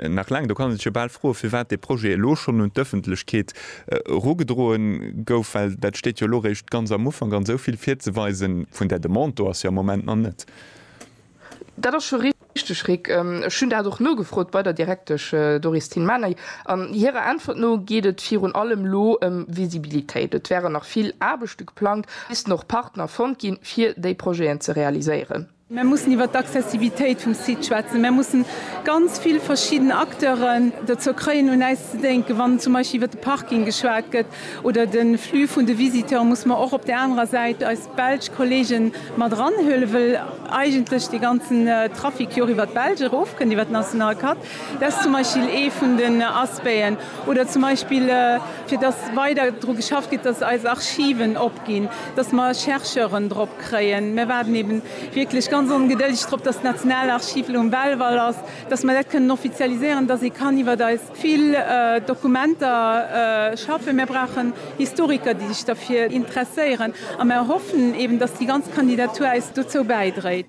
Nach laang, do kann ee sech jo bal froen, firwat dee Projet elo schonn un d'Ëffentlechkeet erugedroen gouf, well dat steet jo elo réischt ganz am Ufank an esou vill virzeweisen vun där Demande do ass jo am Moment nach net. Dat ass scho richteg, Rick. Ech hunn dat och nogefrot bei der Direktesch Doris Tilmany an hirer Äntwert no geet et virun allem elo ëm Visibilitéit. Et wären nach vill Aarbechte geplangt, missten och Partner fonnt ginn, fir déi Projeten ze realiséieren. Mär mussen iwwert d'Accessibilitéit vum Site schwätzen. Mär mussen ganz vill verschidden Acteuren dozou kréien un äis ze dénken. Wann zum Beispill iwwert de Parking geschwat gëtt oder de Flux vun de Visiteuren, musse mer och op där anerer Säit eis belsch Kollegen mat eranhuelen, well eigentlech dee ganzen Trafic jo och iwwert d'Belsch erofkënnt, iwwert d'national Carte. Dat ass zum Beispill ee vun den Aspecten. Oder zum Beispill fir dass weider dru geschafft gëtt, dass eis Archiven opginn, dass mer Chercheuren drop. kréien. Mär waarden eben wierklech ganz ongedëldig drop, dass d'Nationalarchiv elo um Belval ass, dass mär dat kënnen offizialiséieren, dass ee kann iwwert eis vill Dokumenter schaffen. Mär brauchen Historiker, déi sech derfir interesséieren, a mär hoffen eben, dass déi ganz Kandidatur eis dozou bäidréit.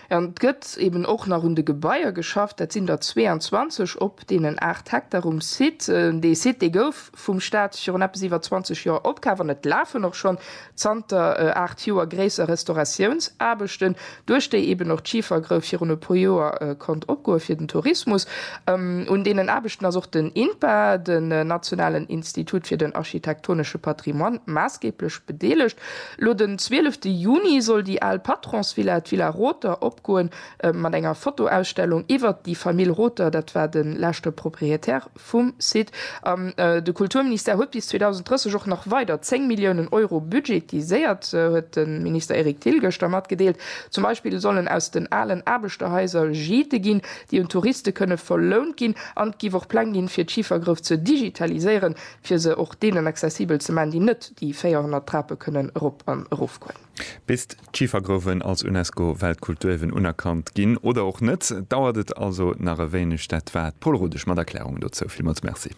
Et gëtt eben och nach un de Gebaier geschafft. Dat sinn der 22 op deenen 8 Hektar um Site. Dee Site, dee gouf vum Staat virun eppes iwwer 20 Joer opkaaft an et lafen och schonn zanter 8 Joer gréisser Restauratiounsaarbechten, duerch déi eben och d'Schifergrouf virun e puer Joer konnt opgoe fir den Tourismus. Un deenen Aarbechten ass och den INPA, den nationalen Institut fir den architektonesche Patrimoine, maassgeeblech bedeelegt. Lo den 12 Juni soll déi al Patronsvilla, d'Villa Rother, opgoen, mat enger Fotoausstellung iwwert déi Famill Rother, dat war de leschte Proprietär vum Site. An de Kulturministère huet bis 2030 och nach weider 10 Milliounen Euro budgetiséiert, huet de Minister Eric Thill gëschter matgedeelt. Zum Beispill sollen aus den alen Aarbechterhaiser Gîte ginn, déi un Touriste kënne verlount ginn. An et géif och Pläng gi fir d'Schifergrouf ze digitaliséieren. fir se och deenen accessibel ze man, déi net déi 400 Trape kënnen erop an erofgoen. Bis d'Schifergrouwen als UNESCO-Weltkulturierwen unerkannt ginn, oder och net, dauert et also nach e wéineg. Dat war d'Paule Rodesch mat Erklärungen dozou. Villmools Merci.